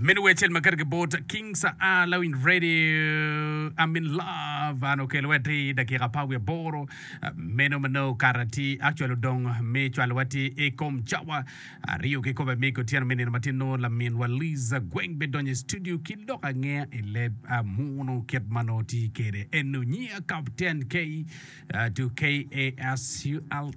Meno wer cel makar ki bot King Sa'a Lawiny Radio I'm in love an okelo wati dakika pa wiye boro meno mano kara ti actual odong mi cwalo wati i kom cawa aryo ki kobe mi kotiano mi nino matino lamin wa Liza Gweng be donyo studio ki lok angeya i leb muno kit mano ti kere eno nyiya Captain K to KASULE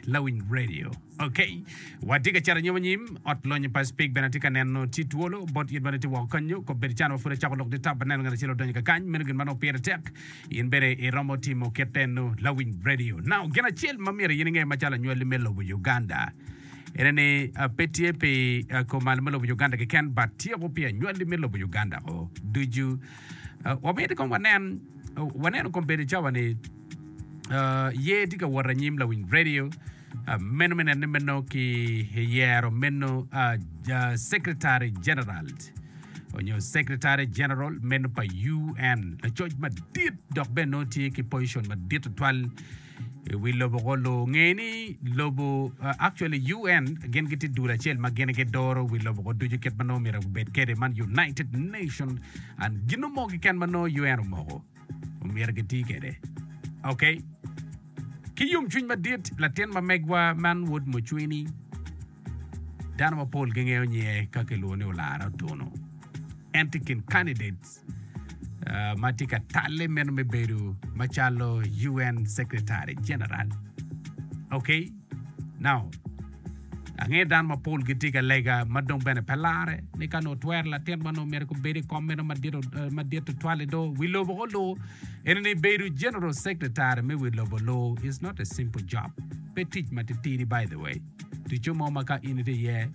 lawiny radio ok watye ka cito anyim anyim ot lonyo pa speak bene atye ka neno tye twolo bot yit bene tye woko kanyo kop bedo can wa pud acako lok ditap aneno ngat acel odonyo kakany meno gin ma nongo pire tek in bene iromo timo kit eno lawiny radio now gin acel ma myero in inge macalo anywali me lobo Uganda ene ni ah, pe tye pi ah, komal me lobo Uganda keken but tyeko pi anywali me lobo Uganda o ducu Wamito kong wanen, waneno kong bene cawa ni ye tye ka wot anyim lawiny radio meno me nene meno ki yero meno Secretary General onyo Secretary General meno pa UN, lacoc madit dok bene nongo tye ki position madit tutwal. I wi lobo ko lunge ni lobo uh, actually UN gin gitye dul acel ma gin gidoro wi lobo ko ducu kit ma nongo myero obed kede man United Nation and gin mo kiken ma nongo UN omoko omyero giti kede okay ki yomcwiny madit latin ma megwa man wod mucwini Dano mapol gingeyo nyinge ka kilwongo ni Olara Otono. En tye i kin candidates uh, ma tye ka talle meno me bedo macalo UN Secretary General. Okay? Now, angeyo dano mapol gitye ka lega ma dong bene pe lare ni ka nongo twero latin ma nongo myero kubedi i kom meno madit uh, madit tutwal i do wi lobo ko lo. Ene ni bedo General Secretary me wi lobo lo is not a simple job. Pe tic matitidi by the way. Ticco mo ma ka in itye iye,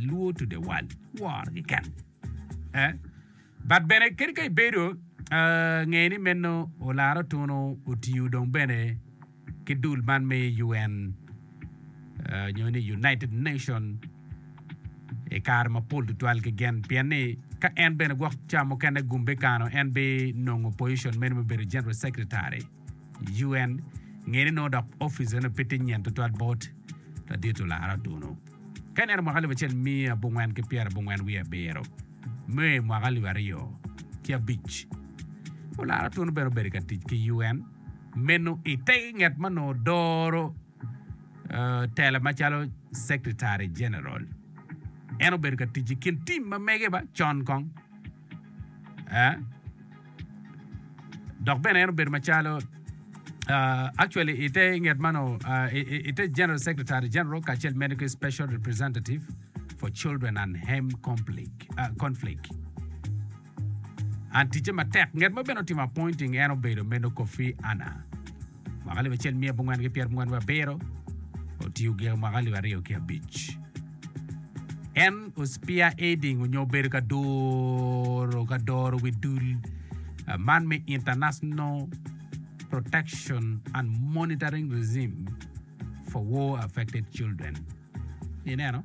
ilwor tudewal, woro keken. But bene kadi ka ibedo, nge ni meno olara otunu otiyo dong bene ki dul man me UN nyo ni United Nation i kare mapol tutwal kegen pien ni ka en bene gwok ca mukene gumbe kano en binongo position meno me bedo General Secretary. UN ngene nongo dok opic meno pe tye nyen tutwal bot ladit olara otunu ka ineno mwaka alip acel miya abongwen ki pyera abongwen wiye abiro me mwaka alip aryo ki abic olara otunu bene obedo ka tic ki UN meno ite nget ma nongo doro uh, tela macalo secretary general en obedo ka tic i kin tim ma mege ba con kong eh? dok bene en obedo macalo uh, actually ite nget mano uh, ite general secretary general kacel mene ki special representative for children and hem conflict, uh, conflict. an ticce matek nget ma bene otimo appointing en obedo meno kofi ana mwaka alip acel miya abongwen ki pyera abongwen ki abiro otiyo gika mwaka alip aryo ki abic en o spearheading onyo obedo ka doro ka doro wi dul ah, man me International Protection and Monitoring Regime for War Affected Children. Ineno?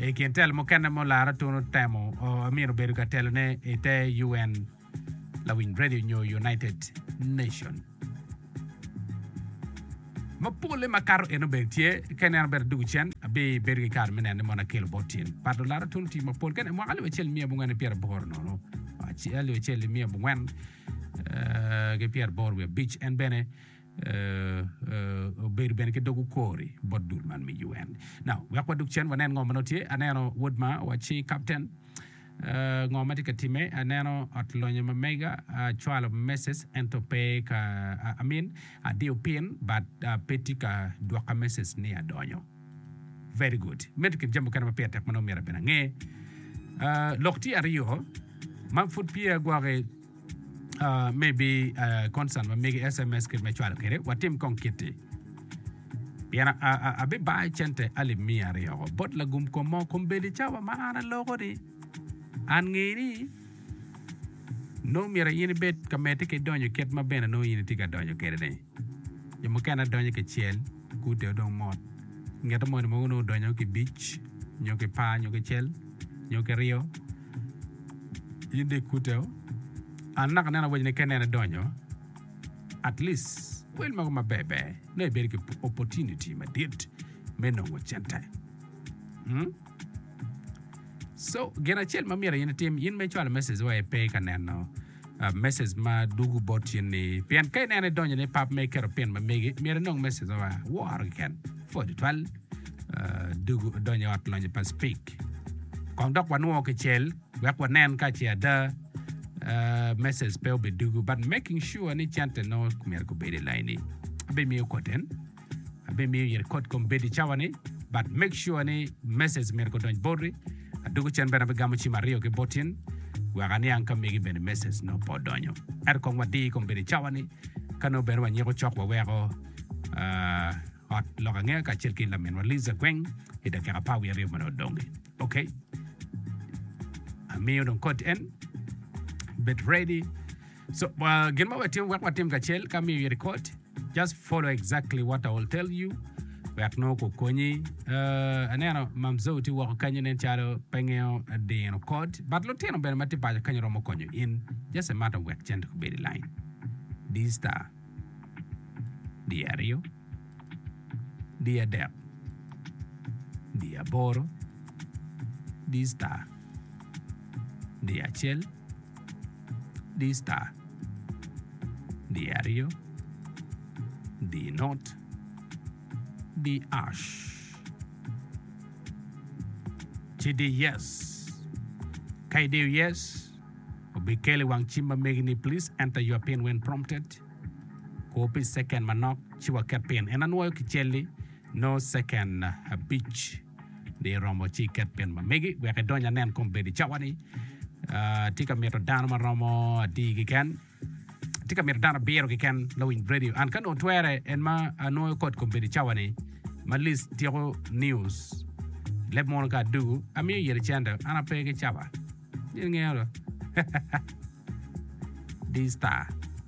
I kin telo mukene ma olara tun otemo, Amin obedo ka telone i te UN lawiny redio nyo United Nation. Ma polle makato eno bene tye, ka ineno bene duk cen, abibedo ki kare me neno ni mono akelo bot cen. Pat olara tun otiyo mapol kene mwaka alip acel miya abongwen ki pyeraboro nono, alip acel miya abongwen ki pyeraboro wiye abic. En bene obedo bene ki dog okori bot dul man me UN. Now, wek waduk cen wanen ngo ma tye. Aneno wod ma waci captain. Uh, ngo ma tye ka time? Aneno ot lonyo ma mega, acwalo uh, message ento pe ka uh, amin adiyo pin but uh, pe tye ka dwoka message ni adonyo. Very good. Medo kin jami mukene ma pire tek ma nongo myero abin ange. Uh, lok tye aryo ma pud pye agwoke me bi concern ma mege sms kit me cwalo kede watim kong kiti pien abibayo cente alip mia aryo bot lagum kom mo kom bedi cawa ma an aloko ni an nge ni nongo myero in ibed ka mete ki donyo kit ma bene nongo in itye ka donyo kede ni Jo mukene adonyo kicel, gudo dong mot. Ingete moni mogo nongo odonyo ki bic nyo ki par nyo ki cel nyo ki ryo. In dong ikute o. An naka aneno awacci ni ka inene donyo, at least wel mogo maber ber nongo ibedo ki opportunity madit me nongo cente. Hmm? So, gin acel ma myero in itim, in ma icwalo message wa ipe ka neno message ma dugu bot in ni pien ka ineno idonyo ni pap me keto pin ma megi myero inong message ma wa woro keken pwod tutwal dugu donyo ot lonyo pa speak kong dok wanwo kicel wek wanen ka ce ada message pe obedugu but making sure ni cente nongo myero gubedo i laini abimiyo koten Abimiyo iri kod kom bed i cawa ni but make sure ni message myero gudonj boti adoko cen bene abigamo cim aryo ki botin wek aniang ka megi bene message nongo pe odonyo ento kong wadir i kom bed i cawa ni ka nongo bene wanyiko cok waweko uh, ot lok angeya kacel ki laminwa Liza Gweng i dakika apar wiye aryo meno odongi ok amiyo dong kod en bed ready So, uh, gin ma wetimo wek watim kacel ka miyo iri kot, just follow exactly what I will tell you. Wek nongo kukonyi. Uh, aneno Mam Zoe ti woko kanyo nen calo pe ngeo dino kot. But lutino bene ma ti paco kanyo romo konyo in. Just a matter of wek cente kubedi line. Di star. Di aryo. Di adek. Di aboro. Di star. Di acel. Di-star, di-aryo, di-not, di-ash, ci di-yes. Ka idiyo yes, obikel i wang cim ma megi ni Please enter your pin when prompted. Kur pi ceken manok ci waket pin. En anwoyo kicelli nongo ceken abic. ni iromo ci iket pin ma megi wek idony anen kom bed i cawa-ni. Ah, tye ka mito dano ma romo adi kiken? Tye ka mito dano abiro kiken lawiny radio. An ka nongo twere en ma anwoyo kot kom bed i cawa-ni ma lis tyeko news leb mono ka adugu amiyo yere cente an ape ki cawa. Nyen ngeo do. D-Star.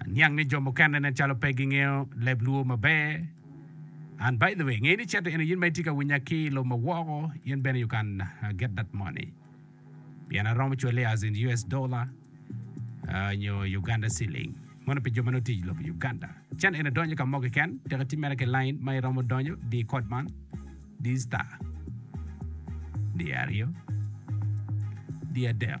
Aniang ni jo mukene nen calo pe gingeyo leb Luo maber. And by the way, nge ni certe eno in ma itye ka winya ki i lobo ma woko, in bene you can get that money. Pien aromo cwale as in US dollar nyo Uganda ceiling. Mono pi jo ma nongo tye i lobo Uganda. Channel eno donyo ka mo keken, tek itim mere ki line ma iromo donyo, di code man, di star, di aryo, di adek.